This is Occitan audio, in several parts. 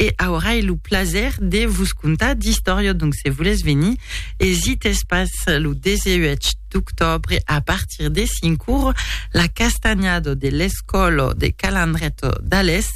e aurai lo plaser de vos contar d'istòria donc se volètz venir esites pas lo 18 d'octobre a partir de 5 ur la castanhada de l'escòla de Calandreto d'Alès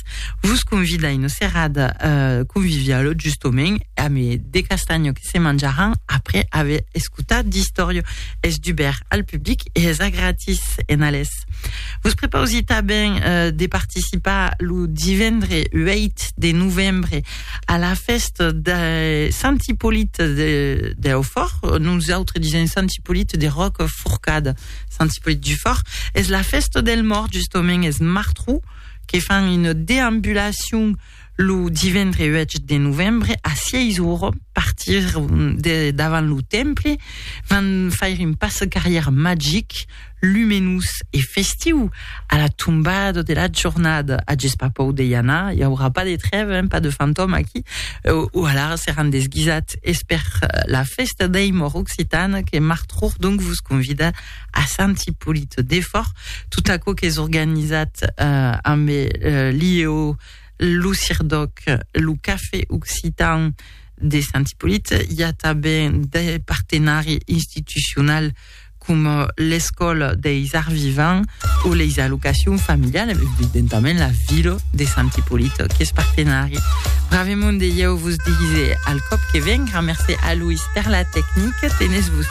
vos convida una serada euh, conviviala justament a me de castanha que se manjaràn après aver escotat d'istòria es dubèrt al public e es a gratis en Alès Costat. Vos prepausi tanben de participar lo divendre 8 de novembre a la festa de Sant Hippolit de, de Aufort, nous autres disons Sant Hippolit de Roc Forcada, Sant Hippolit du Fort, es la festa del mort justament, es martrou, que fan une déambulation Lo divendre 8 de novembre a 6 ora partir de davant lo temple van faire un passe carrière magic, lumenós e festiu a la tombada de la jornada. Ages pas pòur de i anar, i aurà pas de trève, hein, pas de fantòme aquí. O alara seràn desguisats es per la fèsta dei mòrt occitana que Marthour donc vos convida a Sant Ipolit de Fòrth, tot aquò qu'es organizat eh, amb eh, l'IEO, lo CIRDOC, lo Cafè Occitan de Sant Ipolit, i a tanben de partenari institucional com l'Escòla deis Arts Vivants o les allocacions familiales, evidentament la vila de Sant Ipolit qu'es partenari. Bravemont de ieu vos dise al còp que ven, gramercé a Louis per la tecnique, tenez vos